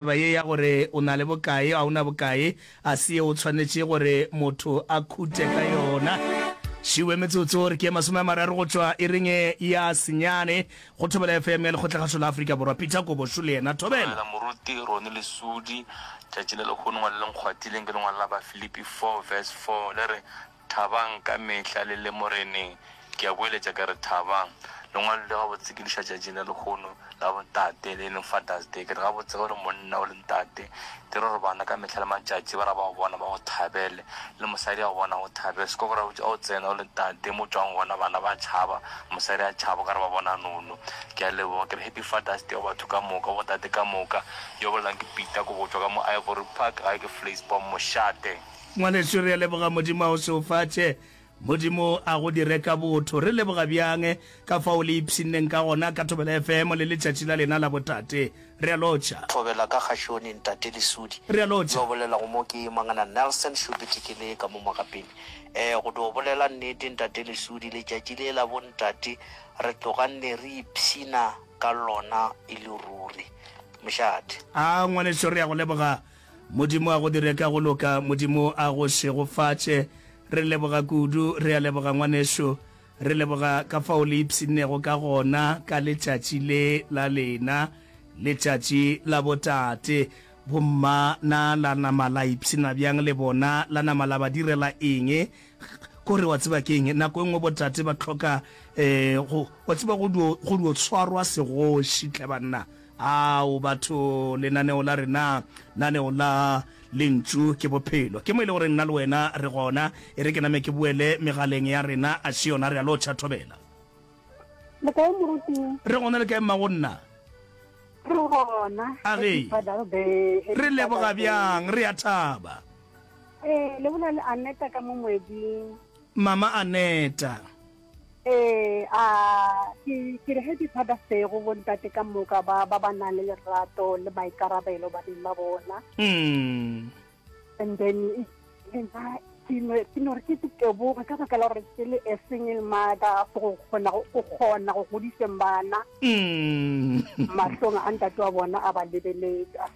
Taba ye ya gore o na le bokae, ga o na bokae, ga se yeo o tshwanetše gore motho a khute ka yona. Šiuwe metsotso re ke ye masome a mararo go tšwa iring e ya senyane go Thobela FM ya Lekgotlakgašo la Afrika Borwa. Peter Kobošu le yena. Thobela. Dumela moruti Ronnie Lesudi. Tšatši le lehono ngwaleleng kgwatileng ke lengwalo la Bafilipi 4 verse 4 le re, Thabang ka mehla le le Moreneng. Ke a boeletša ke re thabang. Le ngwalilwe gabotse ke diša tšatši la lekgono la bontate le e leng Father's Day. Ke re gabotse ge o le monna o le ntate dire gore bana ka mehla le matšatši ba re ba go bona ba go thabele. Le mosadi a go bona a go thabele. Seko gore ga o tsena o le ntate mo o tšwago gona bana ba tšhaba, mosadi a tšhaba o ka re ba bona nono. Ke a leboga. Ke re Happy Father's Day go batho ka moka, go bontate ka moka. Yo bolelang ke Peter Kobotšwa ka mo Ivory Park, gae ke Vleisborm, Mošate. Ngwanešu, re a leboga, Modimo a go šeofatše. Modimo a go dire ka botho. Re leboga bjang ka fao le ipshinneng ka gona ka Thobela FM le letšatši la lena la botate. Re a lotšha. Thobela ka kgašone, Ntate Lesudi. Re a lotšha. Yo bolelago mo ke Mangana Nelson Shupiti, ke le ka mo mogapeng. Ee, go dio bolela nnete, Ntate Lesudi, letšatši le la bontate re tloga nne re ipshina ka lona e le ruri. Mošate. Aa, ngwanešu, re a go leboga. Modimo a go dire ka go loka, Modimo a go šegofatše. Re leboga kudu, re a leboga ngwanešu. Re leboga ka fao le ipshinnego ka gona ka letšatši le la lena, letšatši la botate. Bomma na la nama la ipshina bjang le bona? La nama la ba direla eng? Kore wa tseba ke'ng, nako e nngwe botate ba hloka, um, go, wa tseba, go dio, go dio tshwarwa segoši, hle banna. Ao, batho, lenaneo la rena, naneo la Lentšu ke Bophelo. Ke mo e le gore nna le wena re gona. E re ke name ke boele megaleng ya rena, a še yona? Re a lotšha, thobela. Le kae, Moruti? Re gona, le kae, mma, go nna? Re gona. A ge, re leboga bjang, re a thaba. Ee, le bolela le Aneta ka mo moeding. Mama Aneta. Ee, a ke ke re ge ke thata sego bontate ka moka ba ba ba nang le lerato le maikarabelo baneng ba bona mm. and then nna ke no re ke teboge ka baka la gore ke le a single mother go kgona go kgona go godiseng bana mm. mahlong a ntate wa bona a ba lebeletsa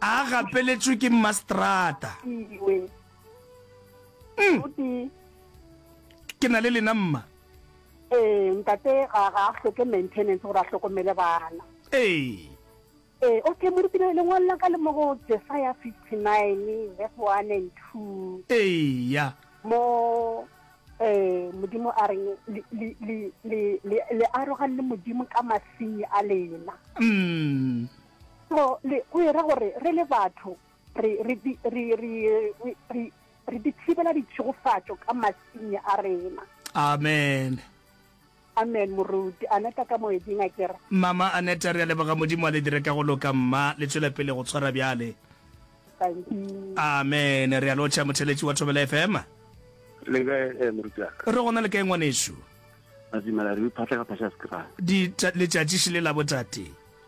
a gapeletšwe ke mmaseterata iwe Mm. goti ke na le lena mma ee ntate ga ga a hloke maintenance gore a hlokomele bana ee ee okay morutile lengwalo la ka le mo go jesaya fifty nine verse one and two eya mo Eh, modimo a reng le- le- le- le- le- le arogane le modimo ka masenyi a lena mm. so le go era gore re le batho re re di- re re re- re- re di thibela ditšhegofatšo ka masenyi a rena amen Amen moruti Aneta ka moeding a kere. Mama Aneta re a leboga Modimo a le dire ka go loka mma le tšwele pele go tshwara bjale. Thank you. Amen re a lotšha motheletši wa Thobela FM. Le kae moruti wa ka. Re gona le kae ngwanešu. Re dumela re iphatla ka phasha ya sekrane. Di letšatši šele la botate.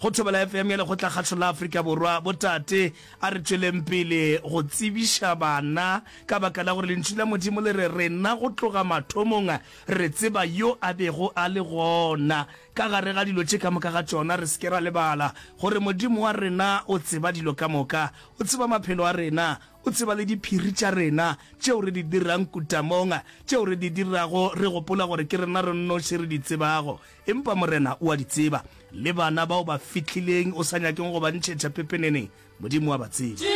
Go Thobela FM ya Lekgotlakgašo la Afrika Borwa, Botate, a re tšweleng pele go tsebiša bana ka baka la gore Lentšu la Modimo le re, Rena go tloga mathomong re tseba Yo a bego a le gona ka gare ga dilo tše ka moka ga tšona. Re se ke ra lebala gore Modimo wa rena o tseba dilo ka moka. O tseba maphelo a rena. O tseba le diphiri tša rena, tšeo re di dirang kutamong, tšeo re di dirago re gopola gore ke rena re nnoši re di tsebago. Empa Morena o a di tseba, le bana bao ba fihlileng o sa nyakeng go ba ntšhetša pepeneneng, Modimo o a ba tseba.